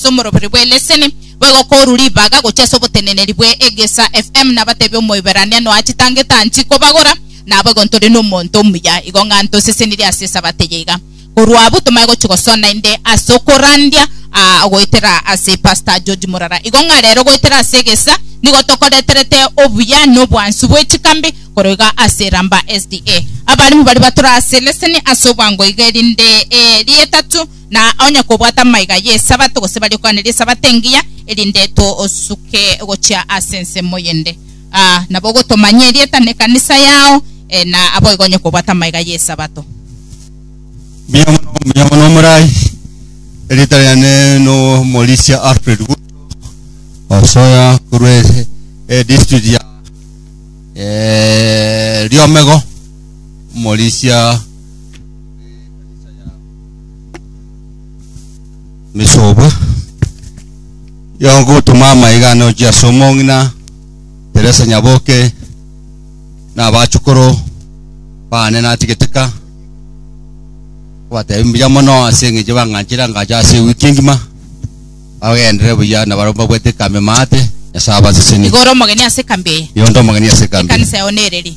ase omoroberi bwe leseni, boigo koru ribaga gochia ase oboteneneri bwe egesa FM nabatebie omoiberania noa chitangete anchi kobagora, naboigo ntore nomonto omuya igo ng'a ntosesenirie ase esabato eye iga. Korwa abwo tomanye gochia gosona inde ase okorandia aa goetera ase Pastor George Murara. Igo ng'a rero goetera ase egesa nigo tokoreterete obuya na obwansu bwe chikambi korwa iga ase Ramba SDA. Abarimu baria batura ase leseni ase obwango iga erinde ee rietatu Na onye kobwata amaiga y'Esabato, gose baria okwanera Esabato engiya, erinde tosuke gochia ase ensemo eyende, aa, nabo ogotomanyia erieta na ekanisa yao, ee, na aboigo onye kobwata amaiga y'Esabato. Mbuya mono, mbuya mono omorai. Erita riane n'omorisia Alfred Guto osoya korwa e- e district ya eh, Riomego, omorisia misoba yogotoma amaiga ane ochia ase omong'ina Teresa Nyaboke na abachukuru bane natigete ka kobatebia mbuya mono ase eng'encho bang'anchire angache ase ewiki engima bagenderere buya na barabwo mbabwate ekambe maate Nyasaye abasesenie Nigo ore omogeni ase ekambi eye. nigo nde omogeni ase ekambi eye. Ekanisa yao nereri.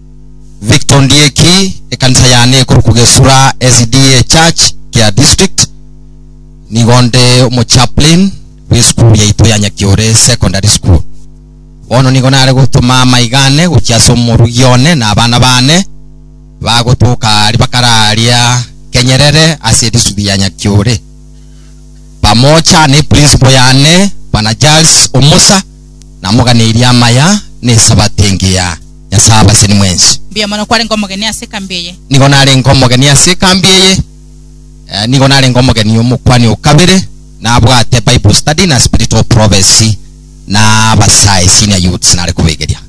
Victor Ndieki, ekanisa yane ekorokwa Gesura SDA Church, Kea District. Nigo nde omochaplain bw'esukuru yaito ya Nyakiore Secondary School. Bono nigo nare gotoma amaiga ane gochia ase omorugi one na abana bane bagotoka aria bakare aria Kenyerere ase edisitiriti ya Nyakiore pamoja ne principal yane bwana Charles Omosa namoganeirie amaya na esabato engiya. Nyasae abaseni mwensi. Mbuya mono kwarenge omogeni ase ekambi eye. Nigo narenge omogeni ase ekambi eye. Eh, nigo narenge omogeni omokwani o kabere nabwate Bible study na spirit of prophecy na abasae senior youths nare kobegeria.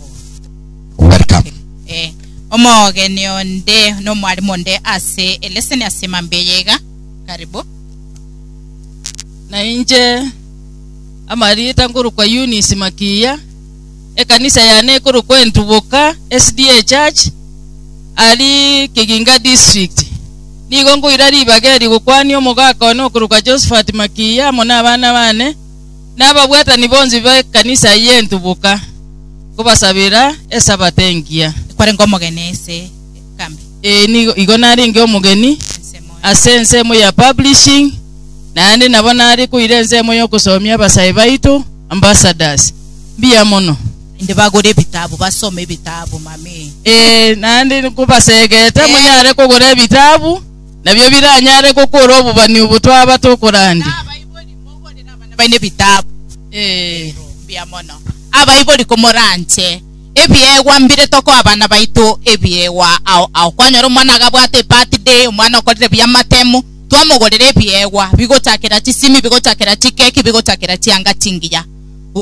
Welcome. Eh, omogeni onde no mwalimu onde ase eleseni ase emambi eye iga. Karibu. na inche amarieta ngorokwa Eunice Makiya ekanisa yane ekorokwa Entuboka SDA Church ari Kiginga District. Nigo nkoira ribaga eri gokwania omogaka one okorokwa Josephat Makiiya amo nabana bane, na ababwatani bonsi b'ekanisa eye y'Entuboka, nkobasabera Esabato engiya. Ekwarenge omogeni ase. Kagame. Ee, nigo- igo narenge omogeni ase ensemo ya publishing, naende nabo nare koira ensemo y'ogosomia abasae baito, ambassadors. Mbuya mono. Naende bagore ebitabu, basome ebitabu, Mami. Ee, naende nkobasegete monyare kogora ebitabu, nabio biranyare gokora obobani obo twaba tokorandi. Abaibori, moborere abana baino ebitabu. Ee. Mbuya mono. Abaibori komoranche. Ebiegwa mbire tokoa abana baito ebiegwa ao ao kwanyora omwana agabwate ebirthday omwana okorire buya amatemu twamogorera ebiegwa bigochakera chisimi bigochakera chikeki bigochakera chianga chingiya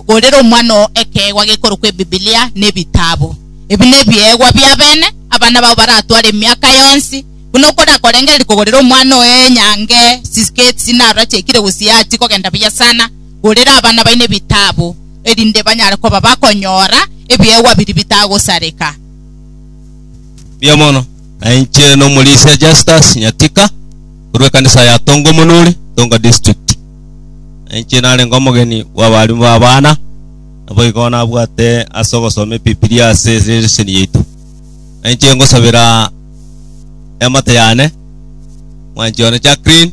gorera omwana oo ekeegwa gekorokwa ebibilia na ebitabu ebi nebiegwa bia bene abana bao baratware emiaka yonsi buna okorakorengereria kogorera omwana oyo enyange chisketi narora chiaikire gose yachikogenda buya sana gorera abana baino ebitabu. erinde banyare koba bakonyora ebiegwa biria bitagosareka. Mbuya mono. Na inche nomorisia Justus Nyatika, korwa ekanisa ya Tongo Monori, Tonga District. Na inche narenge omogeni bw'abarimu b'abana, naboigo nabwate ase ogosoma Ebibilia ase leseni yaito. Na inche ngosabera eamate yane, mwanchi one Jacqueline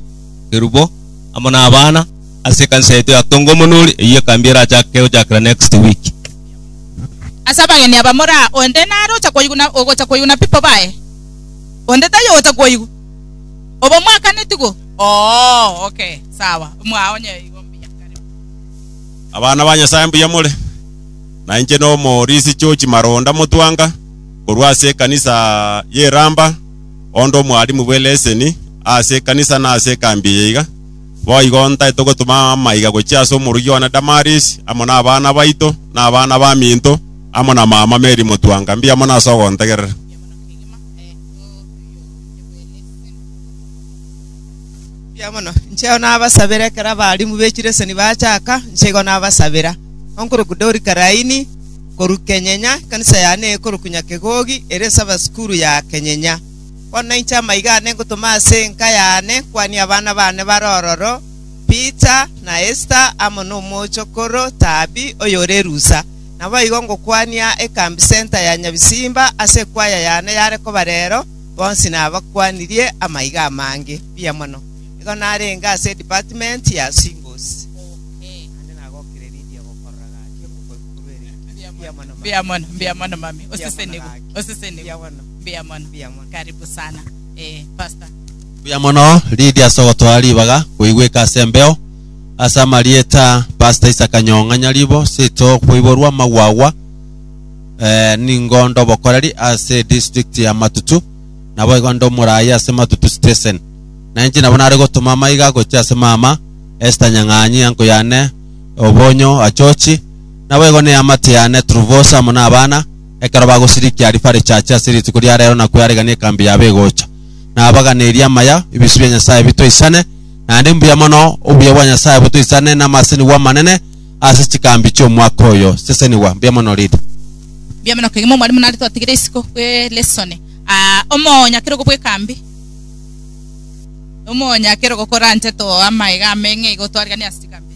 Kerubo, amo n'abana, ase ekanisa yaito ya Tongomonori, eyio ekambi erachake gochakera next week. Ase abageni aba moraa, onde nare ocha koigwa na ogocha koigwa na people baye? Onde taiyo ogocha koigwa? Obo mwakaneti go? Oo, okay, sawa. Mwao onye igo mbuya, karibu. Abana ba Nyasae mbuya more? Nainche n'Omorisi George Maronda Mutwanga, korwa ase ekanisa y'Iramba, onde omwalimu bw'eleseni ase ekanisa na ase ekambi eye iga. Boigo ntaete gotoma amaiga gochia ase omoruya one Damarisi, amo nabana baito, na abana baminto, amo na mama Meri motwanka. Mbiamo nase ogontegerera. Mbuya mono. Incheo nabasabera ekero abarimu b'echileseni bachaka, incheigo nabasabera. Onkorokwa Dori Karaini, korwa Kenyenya, ekanisa yane eye ekorokwa Nyakegogi, ere ase abasukuru ya Kenyenya. Bono inche amaiga aane ngotoma ase enka yaane kwanie abana baane bare ororo, Pita, na Esta, amo nomochokoro Tabi, oyore erusa. Naboigo ngokwania ekambi senta ya Nyabisimba ase ekwaya yaane yare koba reero, bonsi nabakwanirie amaiga amange. Mbuya mono. Igo narenge ase Department ya Symbols. Mbuya mono, mami. Osisenigwe. Mbuya mono. Mbuya mono. Karibu sana. Eh, Pastor. Buya mono Lydia ase ogotwara ribaga koigweka ase embeo ase amarieta Pastor Isaac Nyong'a Nyaribo seito koiborwa amagwa agwa eh, ningo ndobokoreri ase district ya Matutu nabo igo ndomorayi ase Matutu station na inche nabo nare gotoma amaiga gochia ase mama Esther Nyang'anyi anko yane Obonyo Achochi nabo igo ne amate yane Truvosa amo na abana ekero bagosirikia arifa richache ase rituko ria reero na kwearegania ekambi yabo egocha. Na abaganerie amaya, ebisio bia Nyasae bitoisane, naende mbuya mono obuya bwa Nyasae botoisane namasenigwa amanene ase chikambi chi'omwaka oyo. Sesenigwa. Mbuya mono Read. Mbuya mono kegima omwalimu nare twatigire isiko bwe lesson Ah, omoonya kerogo bw'ekambi omoonya kerogo koranche too amaega ameng'e igo twaregania ase chikambi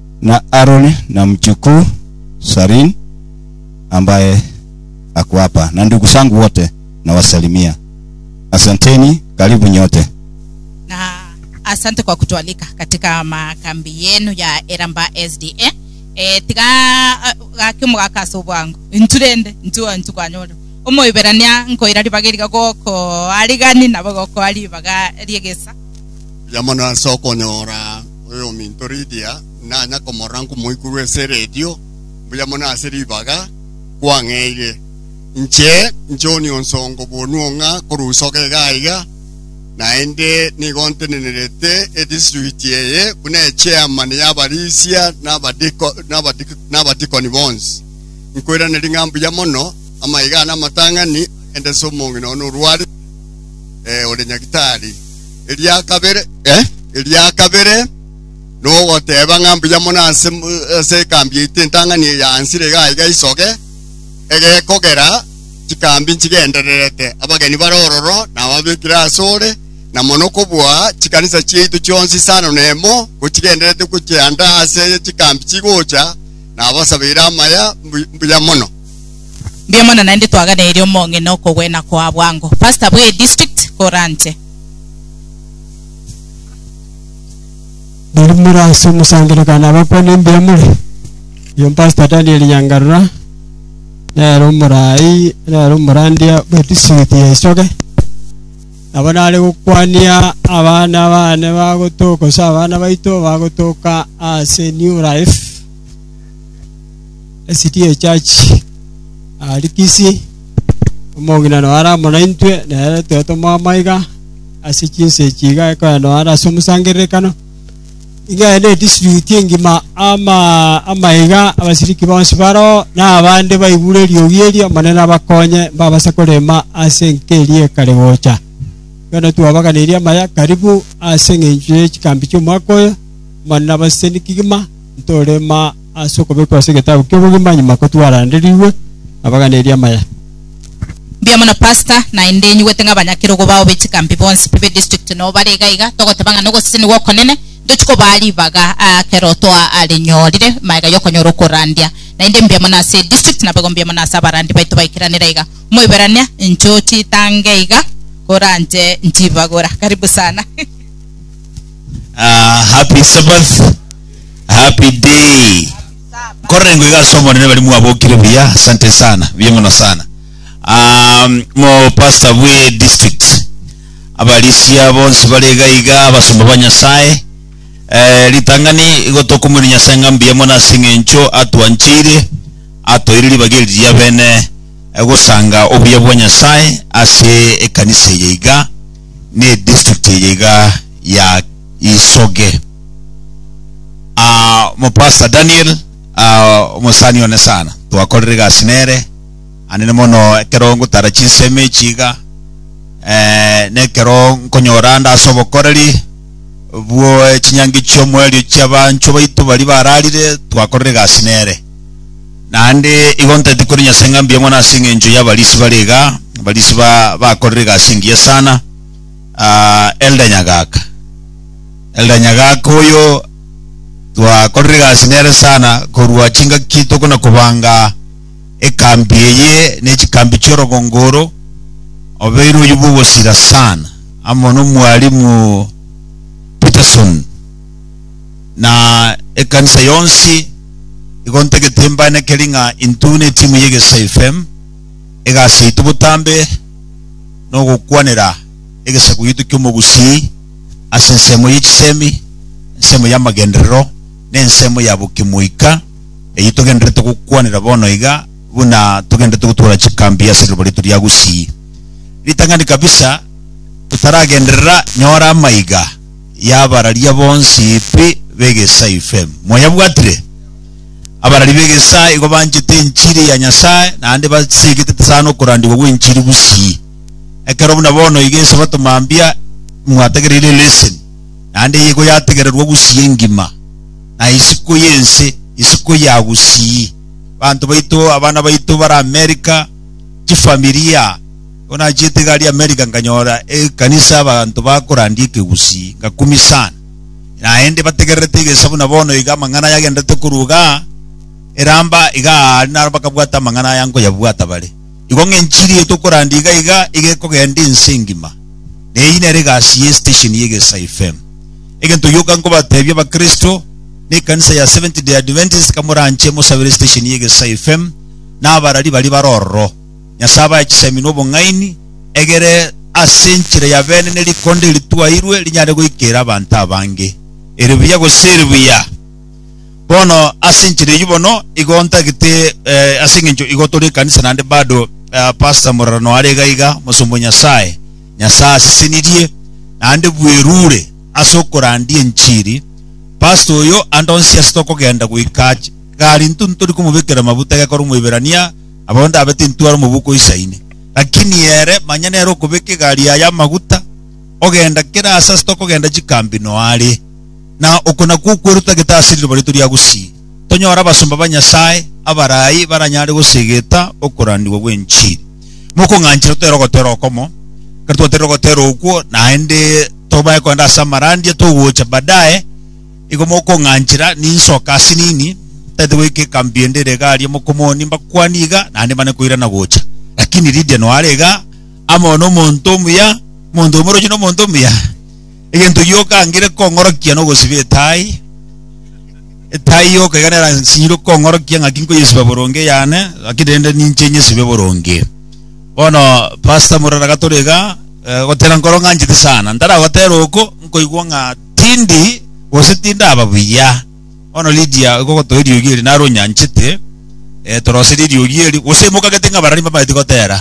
Na Aroni na mchukuu Sarin, ambaye ako hapa, na ndugu zangu wote nawasalimia. Asanteni, karibu nyote. na asante kwa kutualika katika makambi yenu ya eramba sda e, tiga eh, gaki omogaka ase obwango intwe rende intwe intwe kwanyora omoiberania nkoira ribaga eriga gokoa rigani nabo gokoa ribaga riegesa Buya mono ase okonyora Oyominto Lidia nanya komorora nkomoikorwa ase eredio, mbuya mono ase ribaga, kwang'eire. Inche John onsongo bonwo ng'a korusoka iga aiga, naende nigo ntenenerete edistrict eye buna echairman y'abarisia n'abadiko- n'abadi- n'abadikoni bonsi. Nkoiraneria ng'a mbuya mono amaiga ane amatang'ani, agendete ase omong'ina one orwarete, eh, ore nyagitari. Eria kabere, eh, eria kabere nogoteba ng'a mbuya mono ase mu- ase ekambi yaito entang'ani eya ansira iga iga isoge egekogera chikambi nchigendererete abageni bare ororo na ababekire ase ore na mono kobua chikanisa chiaito chionsi isano na emo gochigendererete gochianda ase chikambi chigocha na abasabeire amaya mbu- mbuya mono Mbuya mono naende twaganeirie omong'ina okogwena koa bwango. Pastor bwe district koranche. Riria more ase omosangererekano na abakwane mbuya more. Oyo Pastor Daniel Nyangarura nere omorai nere omorandia bwe district ya Ichoge. Nabo nare gokwania abana bane bagotoka gose abana baito bagotoka ase New Life. esidi y'echachi aria Kisii, omong'ina noyo are amo naintwe, nere tore tomoama iga ase chinsa echi iga ekero noyo are ase omosangererekano. Iga ere nedistributi engima ama amaiga abasiriki bonsi baroo, na abande baigure eriogi eri, Omonene abakonye mbabase korema ase enka eria ekare gocha. Bono twabaganeirie amaya karibu ase eng'encho ye chikambi chi'omwaka oyo, Omonene abasesenie kegima, ntorema. ase okobekwa ase egetabu ki'obogima nyuma kotwaranderigwe nabaganeri amaya. Mbuya mono pastor, naende inyigwete ng'a abanyakerogo bao be chikambi bonsi pi be district noo bare iga iga, togoteba ng'a nogosesenigwa okonene, ntochi kobaa ribaga aa kero toa aa rinyorire maega yokonyora okorandia. Naende mbuya mono ase district nabego mbuya mono ase abarandi baito baikeranera iga. Omoiberania, incho chitange iga koranche nchibagora. Karibu sana. Aa happy sabbath. Happy day. Korora engo iga ase omonene bari mwabokire buya. Asante sana. Buya mono sana. Um, mo pastor bwe district. Abarisia bonsi bare iga iga abasomba ba Nyasaye. Eh, ritangani igo tokumwene Nyasaye ng'a mbuya mono ase eng'encho atwanchire atoire ribaga eri ria bene eh, gosanga obuya bwa Nyasaye ase ekanisa eye iga. n'edistrict eye iga ya Isoge. Omopastor Daniel omosani one sana twakorire egasi nere hanene mono ekero ngotara chinsemo echi iga nekero nkonyora ande ase obokoreri bw'chinyangi chi'omoerio chi'abanchwa baito baria bararire twakorire egasi nere. Naende igo ntaeti kore Nyasae ng'a mbuya mono ase engencho y'abarisi bare iga, abarisi ba bakorire egasi engiya sana. Ah, Elder Nyagaka, Elder Nyagaka oyo twakorire egasi nere sana korwa chingaki tokona kobanga ekambi eye ne chikambi chi'orogongo oro, obeire oyio bw'ogosira sana amo n'omwalimu Peterson na ekanisa yonsi igo ntagete mbaanekeri ng'a intwe netimu ya Egesae FM, egasi yaito botambe nogokwanera egesaku gito ki'omogusii ase ensemo ye chisemi, ensemo y'amagenderero, na ensemo ya bokimoika eyio togendererete gokwanera bono iga buna togendererete gotwora chikambi ase riroba riaito ria Gusii. Ritang'ani kabisa totaragenderera nyora amaiga. y'abararia bonsi pi b'egesaa ifm. Mwayabwatire? Abarari b'egesaa igo banchete enchiri ya Nyasae naende baseegetete sana okorandigwa gw'enchiri bosii. Ekero buna bono iga Esabato mambia imwatagereire lesson, naende eye igo yategererwa bosii engima, na isiko y'ense, isiko ya bosii. Banto baito, abana baito bare America, chifamilia, Igo nachiete egari y'America nkanyora ekanisa y'abanto bakorandia ekegusii, ngakumia sana. Naende bategererete egesa buna bono iga amang'ana aya agenderete korwa iga eramba iga aa naro bakabwata amang'ana aya nkoyabwata bare. Igo ng'a enchiri eye tokorandia iga iga iga ekogenda ense engima. Na eyio nere egasi ye station ye Egesa FM. Egento gioka nkobatebia abakristo na ekanisa ya Seventh Day Adventist, kamoranche mosabere station ye Egesa FM na abarari baria bare ororo. Nyasae abae chisemi na obong'aini, egere ase enchera ya beene ne rikonda eri twairwe rinyare goika ere abanto abange, eri buya gose eri buya. Bono ase enchera eyio bono igo ntagete eh, ase engencho igo tore ekanisa naende bado eh, pastor morarano are iga iga mosomba o Nyasae. Nyasae asesenirie naende bwerure ase okorandia enchiri. Pastor oyo andonsie ase tokogenda goika ach- gari intwe ntori komobekera amabuta gekore Omoiberania Abao ndabe tintware omoboko isaine. Lakini ere, manya nere okobeka egari yaye amaguta, ogenda kera aase ase tokogenda chikambi noa are. Na oko nakwo okwerwa totagete ase riroba rito ria gusii, tonyore abasomba ba Nyasae abarai baranyare gosegeta okorandigwa gw'enchiri. Mokong'anchera totere ogotera okomo, kera twaterire ogotera okwo, naende tobae kogenda ase amarandia, togocha baadaye, Igo mokong'anchera ninsoke ase nini, ntaete goika ekambi ende ere iga aria mokomoni mbakwanie iga, naende mbane koirana gocha. Lakini Lidia noe are iga amo nomonto omuya, omonto omoroche na omonto omuya. Egento gioka angire kong'orokia nogosiba etai, etai yoka iga nera nsinyirwe kong'orokia ng'aki nkoyesiba boronge eyane, lakini rende ninche nyesibe boronge. Bono Pastor Murara gatore iga, eh, gotera nkoro ng'anchete sana, ntaragotera oko nkoigwa ng'a Tindi, gose tindaba buya. Bono Lidia oikogotoa eriogi eri naro onyanchete, eh, toroseri eriogi eri, gose imoka gete ng'a abarari mbamaeti gotera.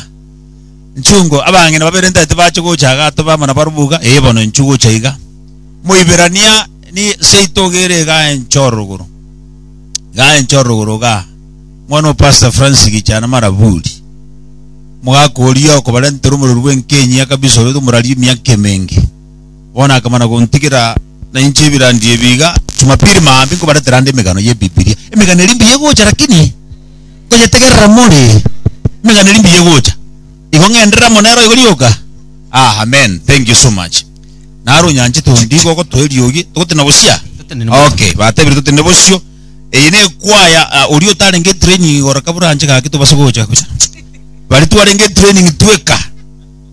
Nchungo, abang'ina babere ntaeti bache gocha iga atobe amo nabarabwo iga, ee, bono inchu gocha iga. Moiberania, ni seito iga ere iga enche orogoro. Iga enche orogoro iga. Mwana o Pastor Francis Gichana Maraburi, omogaka oria okobarentera omorero bw'enkenyi ya Kabisa oria tomoraririe emiaka emenge. Bono akamana gontigera na inche ebirandi ebi iga, Jumapili maambia nkobaretera ande emegano y'Ebibilia. Emegano eria mbuya egocha lakini nkoyetegerera more. Emegano eria mbuya egocha. Igo ng'enderere amo nero igo rioka? Ah, amen. Thank you so much. Naro onyanchete onde igo ogotoa eriogi, togotenena bosio? Totenene bosio. Okay, batebire totenene bosio. Eye nekwaya, ah, oria otarenge etraining igoro kabura anche gaki tobasa gocha gocha. Baria twarenge etraining tweka.